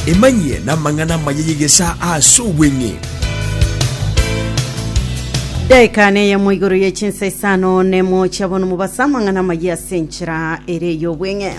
Emanyie namang'ana amaya y'egesaa ase obweng'e. Daika neyemo igoro ye chinsa isano nemo chiabo nomobasa amang'ana amaya ase enchera ere y'obweng'e.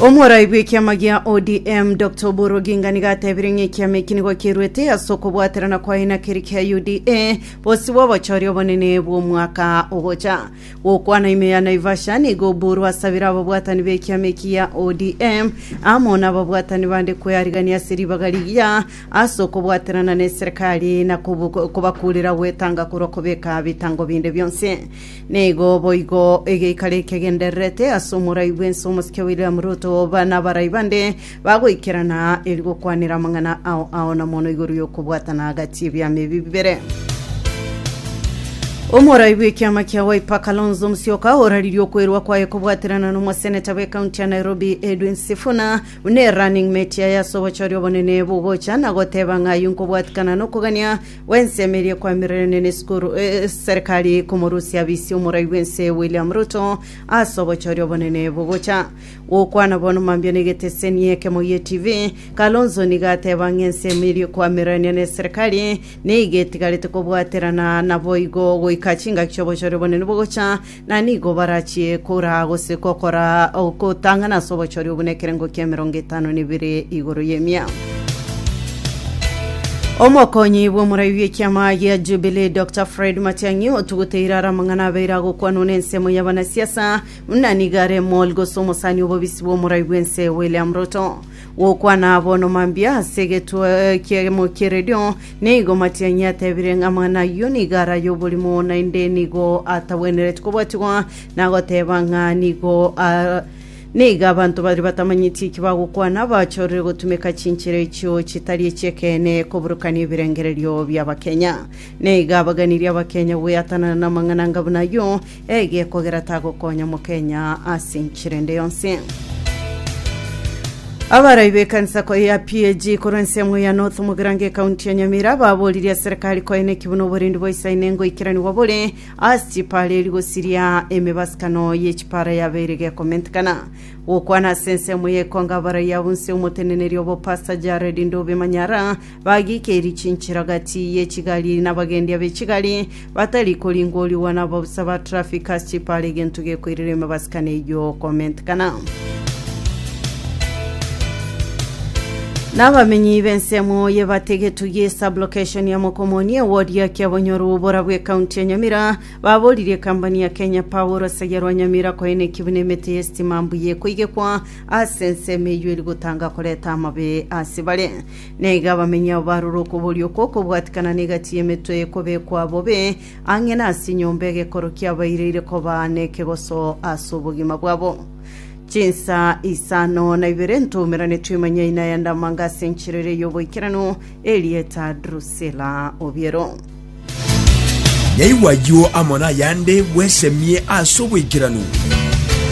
Omworai bw'ekiama gia ODM Dr Oburu Oginga nigo atebire ng'a ekiama eki nigo keruete ase okobwaterana kwaye na keria kia UDA bosio bw'obochori obonene bw'omwaka ogocha. Gokwana ime ya Naivasha nigo Oburu asabire ababwatani b'ekiama eki gia ODM amo n'ababwatani bande kwearigania ase ribaga rigiya ase okobwaterana n'eserekari na kobu- kobakurera gwetanga korwa kobeka bitango binde bionsi. Nigo boigo egeikaro ekegendererete ase omorai bw'ense omosike William Ruto ba- n'abarai bande Bagoikerana aa eri gokwanera amang'ana ao ao na mono igoro y'okobwatana agati y'ebiama ebi bibere. Omorai bw'ekiama kia Wiper Kalonzo Musyoka oraririe okwerwa kwaye kobwaterana n'omoseneta bw'ekaunti ya Nairobi Edwin Sifuna buna erunning mate yaye ase obochori obonene bogocha na goteba ng'a ayio nkobwatikana nokogania gw'ensemo eria ekwamererene n'esukuru eh, serikali komorusia abisi omorai bw'ense William Ruto ase obochori obonene bogocha Gokwana bono mambia na egeteseni ekemo gie TV, Kalonzo nigo ateba ng'a ensemo eria koamererania na eserekari nigo etigarete kobwaterana naboigo goika chingaki chi'obochore obonene bogocha, na nigo barachie koraa gose gokora ogotang'ana ase obochore obwo nekerengo ki'emerongo etano na ebere igoro y'emia. Omokonyi bw'omorai bw'ekiama gia Jubilee Dr Fred Matiang'i otuguteire are amang'ana abeire agokwanwa na ensemo y'abanasiasa Buna nigo are omori gose omosani obobisi bw'omorai bw'ense William Ruto, gokwana abono mambia ase egetuo ekiemo ki'eredio, nigo Matiang'i atebire ng'a mang'ana ayio nigo araye oborimo naende nigo atagwenereti kobwatigwa, na goteba ng'a nigo a- nigo abanto baria batamanyeti eki bagokwana bachorire gotumeka chinchera echio chitari echi'ekeene koburukania ebirengererio bi'Abakenya. Nigo abaganirie Abakenya goeatanana namang'ana anga buna ayio, Eyie kogera tagokonya mokenya ase enchera ende yonsi. Abarai b'ekanisa koye ya PAG korwa ensemo ya North Mugirango ekaunti ya Nyamira baboririe serikali koye neki buna oborendi bwa Isaine ngoikeraniwa bore ase chipara eri gosiria emebasikano ye chipara yabeire gekomentekana gokwana ase ensemo ya ekonga abarai abunse omoteneneri obo Pastor Jared Ndobe Manyara Bagika erichinchero gati ye chigari nabagendia be chigari, batari koringorigwa nabosa ba traffic ase chipara egento gekoirera emabasikano eyio komentekana. Nabamenyi b'ensemo y'ebategetwe ye sublocation ya Mokomoni eward ya Kiabonyoru obora bw'ekaunti ya Nyamira baboririe ekambani ya Kenya Power orosegi rwa Nyamira koeneki buna emete y'esitima mbuya ekoigekwa ase ensemo eyio eri gotanga koreta amabe ase bare. Na iga abamenyi abo barure okoboria okwo okobwatikana n'egati y'emetwe y'ekobekwa bobe ang'e nase enyomba egekoro kiabaireire koba nekegoso ase obogima bwabo. Chinsa isano na ibere ntoumerane twemanyaine aya ndamanga ase enchera eria y'oboikeranu, erieta Drusila Obiero. Yaigwa ayio amo nayande bwesemie ase oboikeranu.